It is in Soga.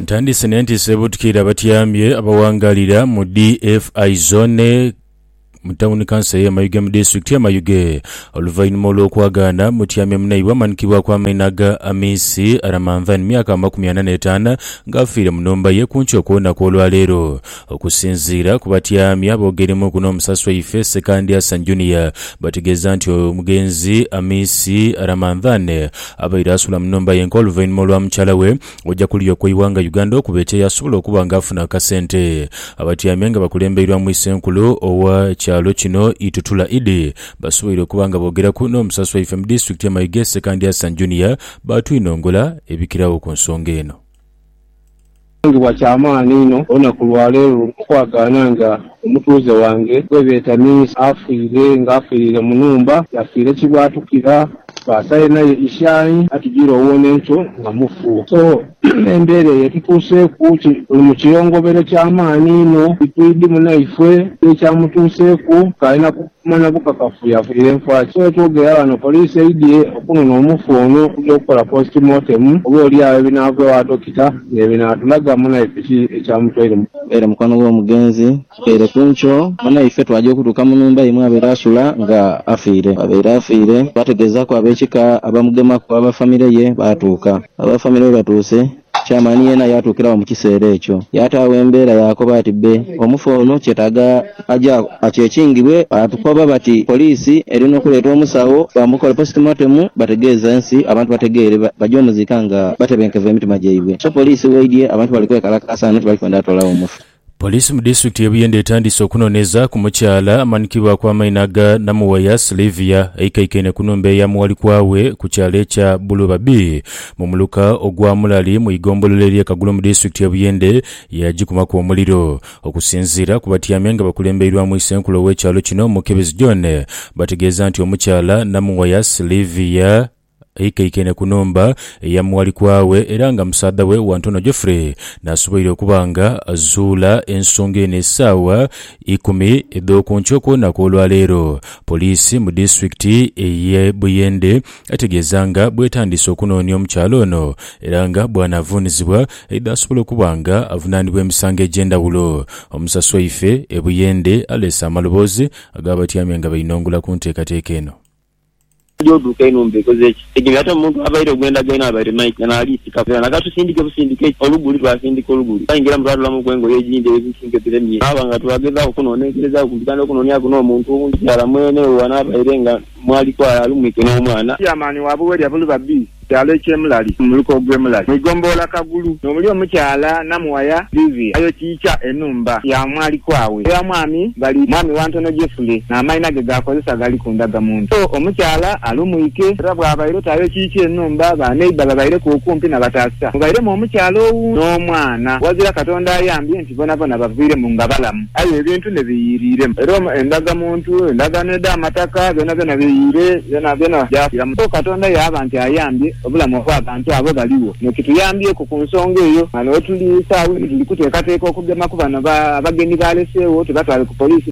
Ntandise n'entiisa ebuutikira abatyamye abawangaalira mu DFI Zone mu tawuni kansa y'e Mayuge mu disitulikiti y'e Mayuge oluvainhuma olw'okwagaana mutyamye munaibwe amanhikibwaku amaina ga Amisi Ramanvani myaka amakumi ana n'etaana ng'afiire mu nhumba ye kunkyo kw'olunaku olwaleero. Okusinziira ku batyami aboogeremuuku n'omusaasi waife, Ssekandi Hassan Junior, bategeeza nti omugenzi Amisi Ramadhane abaire asula mu nhumba yenka oluvainhuma olwa mukyala we oja kuluya okweighanga Uganda okuba ekyeyo asobola okuba nga afuna akasente. Abatyami nga bakulembeirwamu Isenkulu owa kyalo kino Itutula Idi basoboire okuba nga boogeraku n'omusaasi waife mu disitulikiti ye Mayuge Ssekandi Hassan Junior baatwinongola ebikiragho ku nsonga eno. Nsangibwa kya maani inho olunaku lwa leero okwagaana nga omutuuze wange gwebeeta Minsa afiire nga afiirire mu nhumba yafiire kibwatukira basaire naye ishaai atujire owona enkyo nga mufu so embeera eyo etutuuseeku tuli mu kiyongobero kya maani inho itwidhi munaifwe n'ekyamutuuseeku k'alina ku Okumanya bukakafu yafunire nfa ki? Wetwogera ghano poliisi eidhye okunona omufu ono okugya okukola post mortem oba oli agho ebinaava ewa dokita nebinaatulaga munaife ki ekyamutwaire mu. Era mukwano gw'omugenzi kikeire ku nkyo munaife twagya okutuuka mu nhumba ye mwabaire asula nga afiire. Bwabaire afiire twategeezaaku ab'ekika abamugemaku aba famire ye baatuuka. Aba famire bwebatuuse Chairman yeena yaatuukira agho mu kiseera ekyo, yaataagho embeera yaakoba ati, Bbe, omufu ono kyetaaga aje akyekingibwe. Baatukoba bati poliisi eri n'okuleeta omusawo bamukole postmortem bategeeze ensi, abantu bategeere baje omuziika nga batebenkevu emitima gyaibwe. So poliisi weidhye abantu bali kwekalakaasa ghano tibali kwenda atoolagho mufu. Poliisi mu disitulikiti y'e Buyende etandiise okunoneeza ku mukyala amanhikibwaku amaina aga Namuwaya Slyvia eikaikaine ku nhumba eya Muwalikwaawe ku kyalo ekya Buluba B mu muluka ogwa Mulali mu igombolola erye Kagulu mu disitulikiti y'e Buyende ye yagikumaku omuliro. Okusinziira ku batyaime nga bakulembeirwamu isenkulu ow'ekyalo kino Mukebezi John bategeeza nti omukyala Namuwaya Slyvia Aikaikaine ku nhumba eya muwalikwa we era nga musaadha we Wantono Geoffrey n'asoboire okuba nga azuula ensonga eno esaawa ikumi edh'oku nkya okwona kw'olwaleero. Poliisi mu disitulikiti eye Buyende etegeeza nga bwetandiise okunoonia omukyala ono era nga bwanaavuunizibwa aidha asobola okuba nga avunaanibwa emisango egy'endhawulo. Omusasi waife e Buyende aleese amaloboozi ag'abatyami nga bainongula ku nteekateeka eno. Tuli oduuka enhumba ekoze ki? Egeri ate omuntu abaire ogw'endagaino abaire Mike eno ali sikaku era naga tusindike busindike ki? Oluguli twasindika oluguli. Twaingira mbu twatolamuku engoye edhindi edhituusa enketo edhemye. Twaba nga twagezaaku okunonenkerezaaku kumpi kandi okunonyaku n'omuntu owundi kirala mwene owo anaabaire nga mwali kwali ali Mike n'omwana. Chairman wa Buwelya Buluba Bii. Kyalo eky'e Mulali mu muluka ogw'e Mulali mu igombolola Kagulu, n'omuli omukyala Namuwaya Livia ayokiikya enhumba ya mwalikwa we eya mwami Bali mwami wa Ntono Jefule n'amaina ge g'akozesa gali ku ndaga muntu. So omukyala ali mwike era bw'abaire oti ayokiikya enhumba, ba neighbour babaireku okumpi na bataasa mubairemu omukyala owu n'omwana. Ghazira Katonda ayambye nti. Bonabona baviiremu nga balamu, aye ebintu ne biyiiriiremu. Era endagamuntu, endagaano edh'amataka, byonabyona biyiire, byonabyona byafiiramu. Kwo Katonda yaaba nti ayambye obulamu obw'abantu abo baligho. Kino kituyambyeko ku nsonga eyo. Ghano we tuli saagho eno tuli kuteekateeka okugema ku bano abagenyi baaleseegho tubatwale ku poliisi.